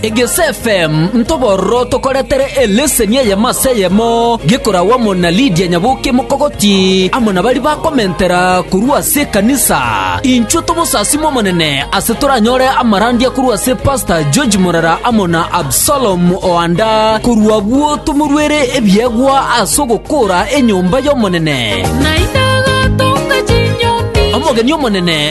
Egese FM ntobororo tokoretere eleseni eyemo ase eyemo gekoragwa amo na Lydia Nyaboke Mokogoti amo na baria bakomentera korwa ase ekanisa. Inchuo tomosasime Omonene ase toranyore amarandia korwa ase Pastor George Morera amo na Absalom Oanda korwa abwo tomoruere ebiegwa ase ogokora enyomba y'Omonene. Omogeni omonene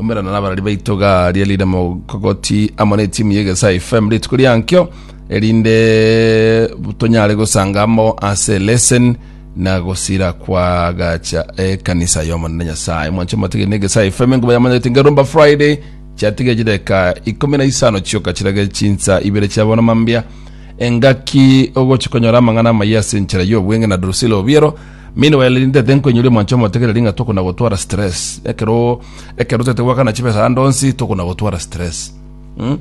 Omerana nabarari baito gari erinde mogogoti amo na etimu ya Egesa FM rituko riankio erinde tonyare gosanga amo ase lesson na gosira kwa gacha ekanisa y'omonene nyasaye mwanche matigiri na Egesa FM enkuba yamanyete ngerumba friday chiatige chideka ikumi na isano chioka chirage chinsa ibere chia bono mambia engaki ogochikonyora amang'ana amaya ase enchera y'obwenge na Drusilla Obiero Meanwhile rinde tenkoinyora omwancho omotegereri ng'a tokona gotwara stress. Ekero ekero totete goakana chibesa ande onsi tokona gotwara stress. Mh?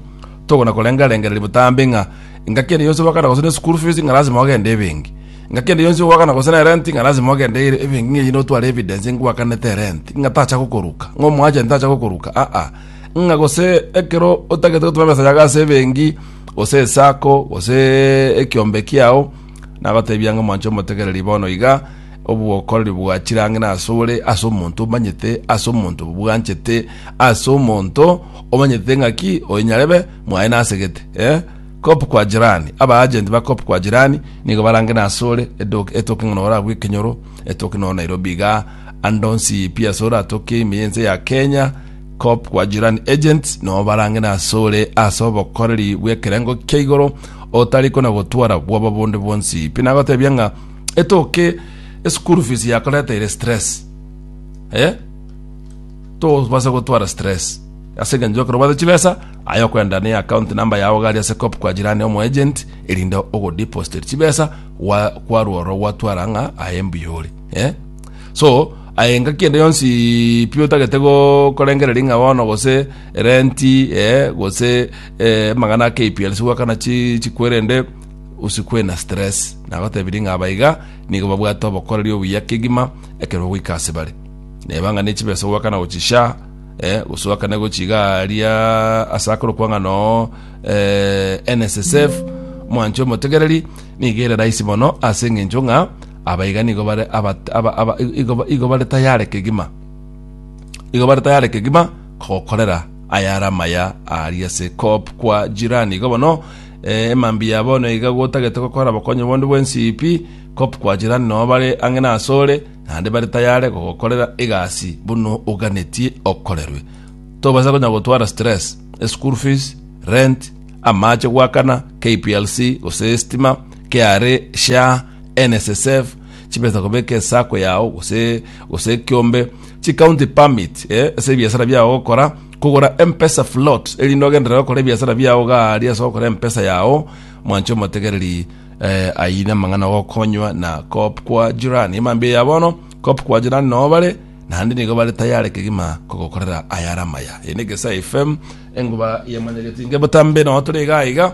Tokona korenga rengereria botambe ng'a ng'a kende yonsi goakana gose ne school fees ng'a lazima ogende ebenki. Ng'a kende yonsi goakana gose ne rent ng'a lazima ogende ere ebenki ng'a eyio notware evidence ngoakanete rent ng'a tacha gokoruka, ng'a omoagent tacha gokoruka aa. Ng'a gose ekero otagete gotoma ebesa yago ase ebenki gose esako goseeee ekiombe kiao Nagoteebia ng'a mwanche omotegereri bono iga, obokoreri bwa chirangi nasore ase omonto omanyete, ase omonto obwanchete, ase omonto omanyete ng'aki oyo nyarebe mwaye nasegete eh? Kop kwa jirani, abaagenti ba kop kwa jirani nigo barange nasore edoki etoke ng'a nora agwo ekenyoro etoke noo Nairobi iga, ande onsi pi asore atoke ime y'ense ya Kenya, Coop kwa Jirani Agents noo barang'ina asore ase obokoreri bw'ekerengo kia igoro otari kona gotwara bwoba bonde bwonsi. Pi nagotebia ng'a etoke eschool fees yakoreteire stress. Eh? Tobase gotwara stress. Ase eng'encho ekero obate chibesa, aye okwenda ne account number yao gari ase Coop kwa Jirani omo agent erinde ogodeposit chibesa gwa kwarwa oro gwatwara ng'a aye mbuyore. Eh? so aye engaki ende yonsi pi otagete go- korengereria ng'a bono gose renti eh, gose eh, amang'ana a KPL sigwakana chi- chikwerende usikwe na stress nagotebirie ng'a aba iga nigo babwate obokoreri obuya kegima ekero bagoika ase bare neba ng'a ne chibesa ogwakana gochia sha eh, gose ogakane gochia iga aria ase akorokwa ng'a no eh, NSSF mwanche omotegereri nigo ere rahisi mono ase eng'encho ng'a Aba iga nigo bare abat- aba- aba- igo- igo bare tayare kegima igo bare tayare kegima kogokorera ayare amaya aria ase kop kwa jirani igo bono eh, emambi ya bono iga gotagete gokora bokonyi bonde bwensipi kop kwa jirani noo bare ang'e nasore naende bare tayare gogokorera egasi buna oganetie okorerwe tobasa konya gotwara stress eschool fees rent amache gwakana kplc gose estima kra sha NSSF, chibesa kobeka esako yao gose gose ekiombe, chi county permit eh, ase ebiasara biao gokora, kogora M-pesa float erinde ogenderere gokora ebiasara biao gaaria ase gokora M-pesa yao. Mwanche omotegereri eh, ayio namang'ana gokonywa na kop kwa jirani. Emambia ya bono, kop kwa jirani noo bare naende nigo bare tayare kegima kogokorera ayare amaya. Eye ne Gesae FM, enguba yemanyegeti nge botambe noo tore iga iga.